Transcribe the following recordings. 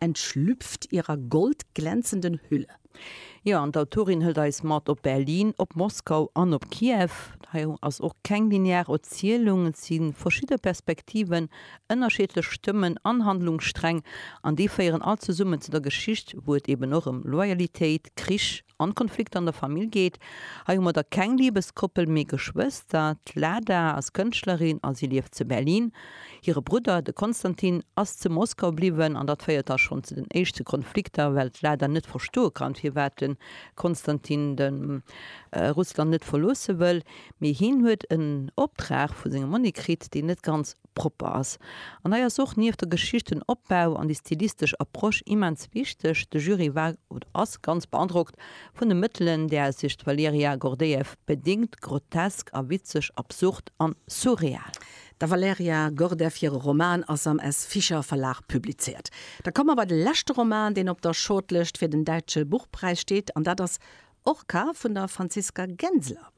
Entschlüpft ihrer goldglänzenden Hülle. Jo, an d'Autorin hëlt eis mat op Berlin, op Moskau an op Kiew. Hei ass och keng linear Erzielung, et si verschidde Perspektiven, ënnerschiedlech Stëmmen an Handlungssträng, an déi féieren all zesummen zu der Geschicht, wou et eben och ëm Loyalitéit, Krich, an d'Konflikter an der Famill geet. Hei hu mer da keng Libeskoppel, mee Geschwëster. D'Lada ass Kënschtlerin a si lieft zu Berlin. Hire Brudder, de Konstantin, ass zu Moskau bliwwen an dat féiert da schonn zu den éischte Konflikter, well d'Lada net verstoe kann, firwat de Konstantin de Russland net verloosse wëll. Mee hien huet en Optrag vu sengem Monni kritt, deen net ganz propper ass. An hei ass och nieft der Geschichtenopbau an déi stilistesch Approche immens wichteg, de Jury war oder ass ganz beandrockt vun de Mëttelen, där sech d'Valerija Gordejew bedingt, grotesk a witzeg, absurd an surreal. Der Valerija Gordejew hire Roman ass am S. Fischer Verlag publizéiert. Da komme mer bei de leschte Roman, deen op der Shortlëscht fir den Däitsche Buchpräis steet, an dat ass Orca vun der Franziska Genseler.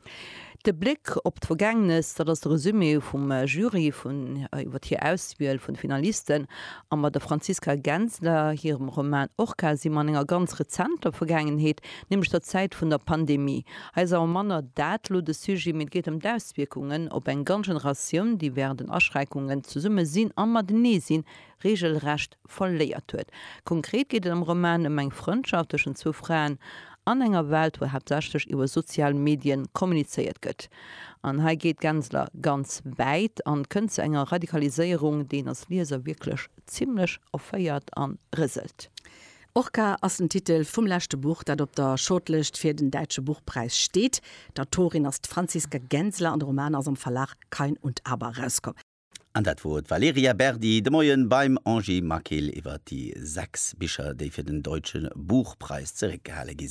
De Bléck op d'Vergängnes, dat ass de Resumé vum Jury vun iwwer hir Auswiel vun de Finalisten. A mat der Franziska Genseler hirem Roman Orca si mer an enger ganz rezenter Vergaangenheet, nämlech der Zäit vun der Pandemie. Hei ass awer manner dat elo de Sujet, mee et geet ëm d'Auswierkungen op eng ganz Generatioun, déi wärend den Aschränkungen zesumme sinn a matenee sinn reegelrecht verléiert huet. Konkret geet et am Roman ëm eng Frëndschaft tëschent zwou Fraen an enger Welt, wou haaptsächlech iwwer sozial Medien kommunizéiert gëtt. An hei geet Gensler ganz wäit an kënnt zu enger Radikaliséierung, déi een als Lieser wierklech zimmlech erféiert an rëselt. Orca ass den Titel vum leschte Buch, dat op der Shortlëscht fir den Däitsche Buchpräis steet. D'Autorin ass d'Franziska Gensler an de Roman ass am Verlag Kain und Aber erauskomm. An dat wor d'Valerija Berdi de Moien beim Angie Maquil iwwert déi 6 Bicher, déi fir den Deutschen Buchpreis zeréckgehale gi sinn.